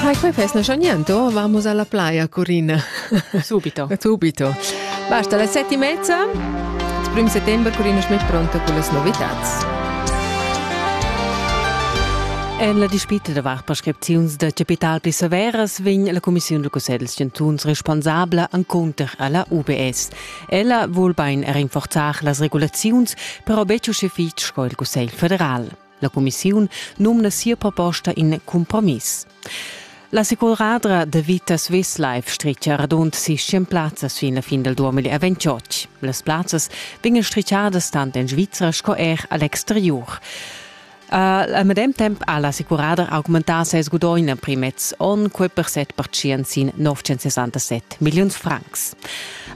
Hai, quei fesnescha niente, vamos alla playa, Corina. Subito. Subito. Basta la sette e mezza. Il primo settembre Corina è pronta con le novità. En la dispita davart prescripziuns da capital pli severas vegn la Commissiun da Cussegls chantuns responsabla encunter alla UBS. Ella vul bein rinforzar las regulaziuns, però betg uschè fitg sco il Cussegl federal. La cumissiun numna sia proposta in compromiss. La securadra de vita Swisslife stricia radund sis plazzas fin la fin del 2028. Las plazzas vegnan stricciadas tant en Svizra sco er al exterior. Uh, a medem temp ha la securadra augmentà ses gudogn en primets onn quei per 7% sin 967 milliuns francs.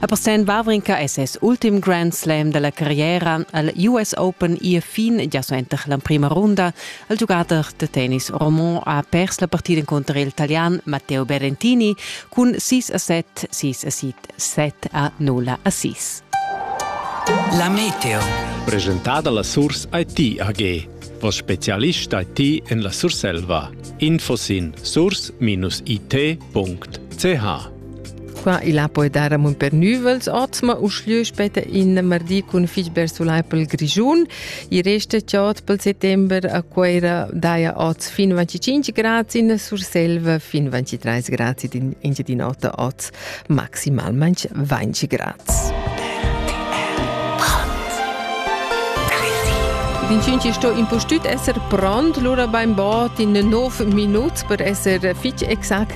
A Porscen Vavrinka es ses ultim Grand Slam da la carriera al US Open ir fin già suenter l'emprima runda. Il giugader da tennis Romon ha pers la partida encunter il Italian Matteo Berrettini cun 6 a 7, 6 a 7, 7 a 0 a 6. La Meteo. Presentada la Source IT AG. Vos specialist IT en la Surselva. Info sin source-it.ch Qua il ha poi dar amon per nüvels otsma uschlö später in mardi cun fich bersulai pel Grischun. I resta chod pel settember a Cuera daja oz fin 25 grads in Surselva fin 23 grads in Engiadin'Ota oz maximalmente 20 grads. Vincinci sto impustüt esser pront, lura beim Bord in 9 minut per esser fitg exact